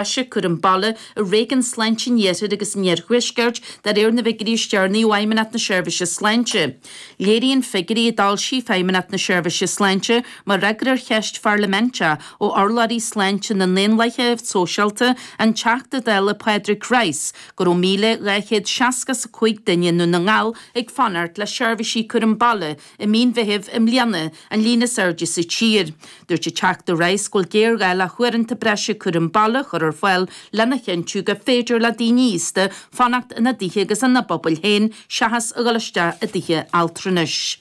Cúram baile i réigiúin sláinte an Iarthair agus an Iarthuaiscirt de réir na bhfigiúirí is deireanaí ó Fheidhmeannacht na Seirbhíse Sláinte. Léiríonn figiúirí a d'fhoilsigh Feidhmeannacht na Seirbhíse Sláinte mar fhreagra ar cheist pharlaiminteach ó urlabhraí sláinte na nDaonlathaithe Sóisialta, an Teachta Dála Pádraig Rice, go raibh 1,265 duine i nDún na nGall ag fanacht le seirbhísí cúraim baile i mí an Mheithimh i mbliana, an líon is airde sa tír. Dúirt an Teachta Rice go bhfuil géarghá le huaireanta breise cúraim baile a chur ar fáil lena chinntiú gur féidir le daoine aosta fanacht ina dtithe agus ina bpobail féin seachas a dhul isteach i dtithe altranais.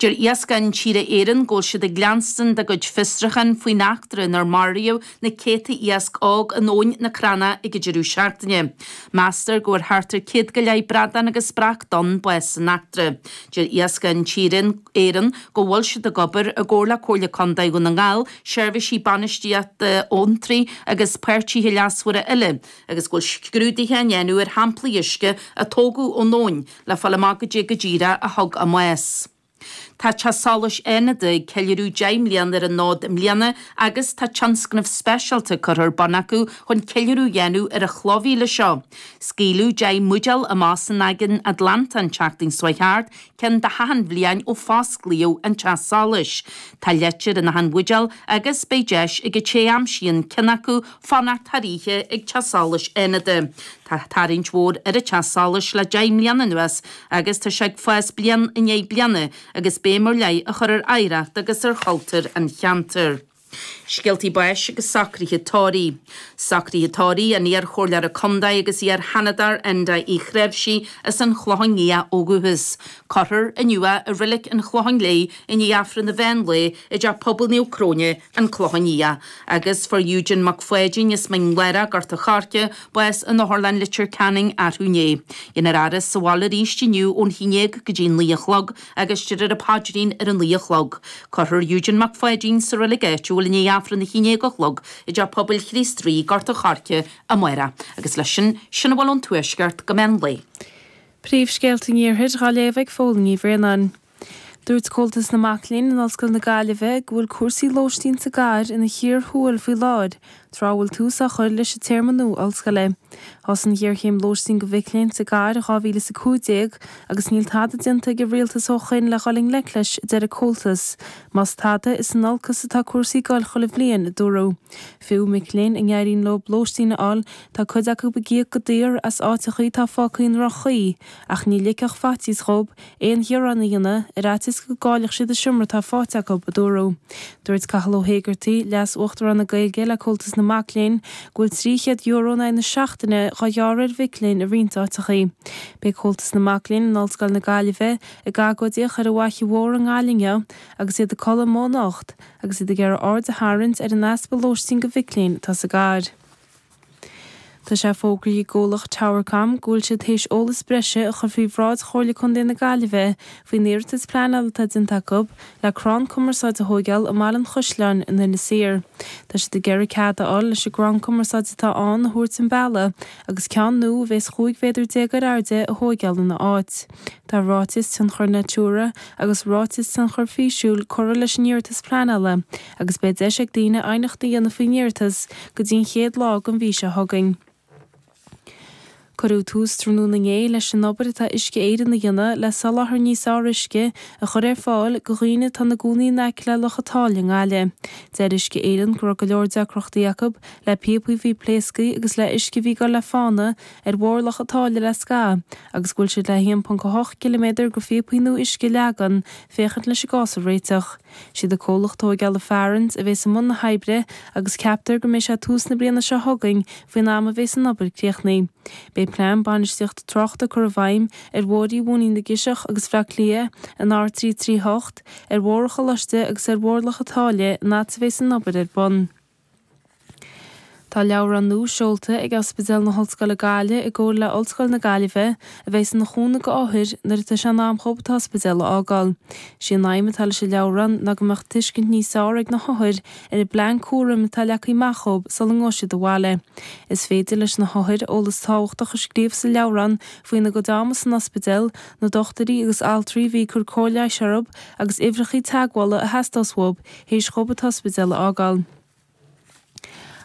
Deir Iascach Intíre Éireann go bhfuil siad ag leanstan dá gcuid fiosruchán faoin eachtra inar maraíodh na céadta iasc óg in abhainn na Crana ag an deireadh seachtaine. Meastar go bhfuair thart ar 100 go leith bradán agus breac donn bás san eachtra. Deir Iascach Intíre Éireann go bhfuil siad ag obair i gcomhar le Comhairle Contae Dhún na nGall, seirbhísí bainistíochta abhantraí agus páirtithe leasmhara eile agus go bhfuil scrúduithe á ndéanamh ar shamplaí uisce a tógadh ón abhainn le fáil amach goidé go díreach a thug an bás. Tá Teach Solais Fhánada ag ceiliúradh 10 mbliana ar an fhód i mbliana agus tá tionscnamh speisialta curtha ar bun acu chun ceiliúradh a dhéanamh ar an chloch mhíle seo. Scaoileadh 10 mbuidéal amach san Aigéan Atlantach an tseachtain seo thart, ceann do hachan bhliain ó fosclaíodh an teach solais. Tá leitir in achan bhuidéal agus beidh deis ag an té a aimsíonn ceann acu fanacht thar oíche ag Teach Solais Fhánada. Tá tarraingt mhór ar an Teach Solais le deich mbliana anuas agus tá sé ag fás bliain i ndiaidh bliana agus béim ar leith á chur ar oidhreacht agus ar chultúr an cheantair. Scéaltaí báis agus socruithe tórraimh. Socruithe tórraimh an iarchomhairleora contae agus iarSheanadóir Enda Uí Chnáimhsí as an Chlochán Liath ó dhúchas. Cuirfear inniu é i Reilig an Chlocháin Léith i ndiaidh Aifreann an mheán lae i dTeach Pobail Naomh Cróine, an Clochán Liath, agus fuair Eugen Mac Pháidín as Mín Lárach, Gort a' Choirce, bás in Otharlann Leitir Ceanainn arú inné. Déanfar a fhaire sa bhaile arís inniú ón haon dhéag go dtí naoi a chlog agus déarfar an paidrín ar a naoi a chlog. Cuirfear Eugen Mac Pháidín sa reilig áitiúil i ndiaidh aifreann a haon dhéag a chlog i dteach pobail Chríost Rí, Gort a' Choirce, amárach agus leis sin sin a bhfuil ón Tuaisceart go meán lae. Príomhscéalta an iarthair, dhá léamh ag Póilín Ní Bhraonáin. Dúirt Comhaltas na Mac Léinn in Ollscoil na Gaillimhe go bhfuil cúrsaí lóistín sa gcathair ina chíor thuathail faoi láthair, tráth a bhfuil tús á chur leis an téarma nua ollscoile. Thosaigh an ghéarchéim lóistín do mhic léinn sa gcathair in 2015 agus níl tada déanta ag an rialtas ó shoin le dhul i ngleic leis, a deir an Comhaltas. Más tada, is in olcas atá cúrsaí ag dul chuile bhliain, a dúradh. Fiú mic léinn a n-éiríonn leo lóistín a fháil, tá cuid acu ag íoc go daor as áiteachaí atá fágtha i ndroch-chaoi, ach ní ligfeadh faitíos dhóib aon ghearán a dhéanamh ar fhaitíos go gcaillfeadh siad an seomra atá faighte acu, a dúradh. Dúirt Cathal Ó hÉigeartaigh, Leas-Uachtarán na Gaeilge le Comhaltas na Mac Léinn, go bhfuil €300 in aghaidh na seachtaine dhá ghearradh ar mhic léinn i roinnt áiteacha. Beidh Comhaltas na Mac Léinn in Ollscoil na Gaillimhe ag agóidíocht ar an bhFaiche Mhór i nGaillimh inniu agus iad ag codladh amuigh anocht agus iad ag iarraidh aird a tharraingt ar an easpa lóistín do mhic léinn atá sa gcathair. Tá sé fógraithe ag an gcomhlacht Towercom go bhfuil siad tar éis eolas breise a chur faoi bhráid Chomhairle Contae na Gaillimhe faoin iarratas pleanála atá déanta acu le crann cumarsáide a thóigeáil i mBaile an Chaisleáin in Inis Oírr. Tá siad ag iarraidh cead a fháil leis an gcrann cumarsáide atá ann a thabhairt chun bealaigh agus ceann nua a bhéas 15 mhéadar ar airde a thóigeáil ina áit. Tá Ráiteas Tionchair Natura agus Ráiteas Tionchair Físiúil curtha leis an iarratas pleanála agus beidh deis ag daoine aighneacht a dhéanamh faoin iarratas go dtí an chéad lá den mhí seo chugainn. Cuireadh tús tráthnóna inné leis an obair atá Uisce Éireann a dhéanamh le soláthar níos fearr uisce a chur ar fáil go dhaoine atá ina gcónaí in aice le Loch a' tSáile i nGaillimh. Deir Uisce Éireann go raibh go leor deacrachtaí acu le píopaí a bhí pléasctha agus le huisce a bhí ag goil le fána ar Bhóthar Loch a' tSáile le scaitheamh agus go bhfuil siad le 1.8 ciliméadar go phíopaí nua uisce a leagan, féachaint leis an gcás a réiteach. Siad an comhlacht tóigeála Farrans a bhéas i mbun na hoibre agus ceaptar go mbeidh sé tús na bliana seo chugainn faoin am a bhéas an obair críochnaithe. Beidh plean bainistíochta tráchta ag cur i bhfeidhm ar Bhóithrí Mhóinín na gCiseach agus Bhleá Cliath, an R338, ar Bhóthar an Choláiste agus ar Bhóthar Loch a' tSáile an fhad a bhéas an obair ar bun. Tá leabhrán nua seolta ag Ospidéal na hOllscoile Gaillimh i gcomhar le Ollscoil na Gaillimhe a bhéas ina chúnamh go othair nuair atá sé in am dhóibh an t-ospidéal a fhágáil. Sé an aidhm atá leis an leabhrán ná go mbeadh tuiscint níos fearr ag na hothair ar an bplean cúraim atá leagtha amach dhóibh sula ngabhfaidh siad abhaile. Is féidir leis na hothair eolas tábhachtach a scríobh sa leabhrán faoina gcuid ama san ospidéal, na dochtúirí agus altraí a bhí ag cur cóir leighis orthub agus uimhreachaí teagmhála a theastós uathub théis dhóibh an t-ospidéal a fhágáil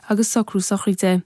agus socrú sochraide.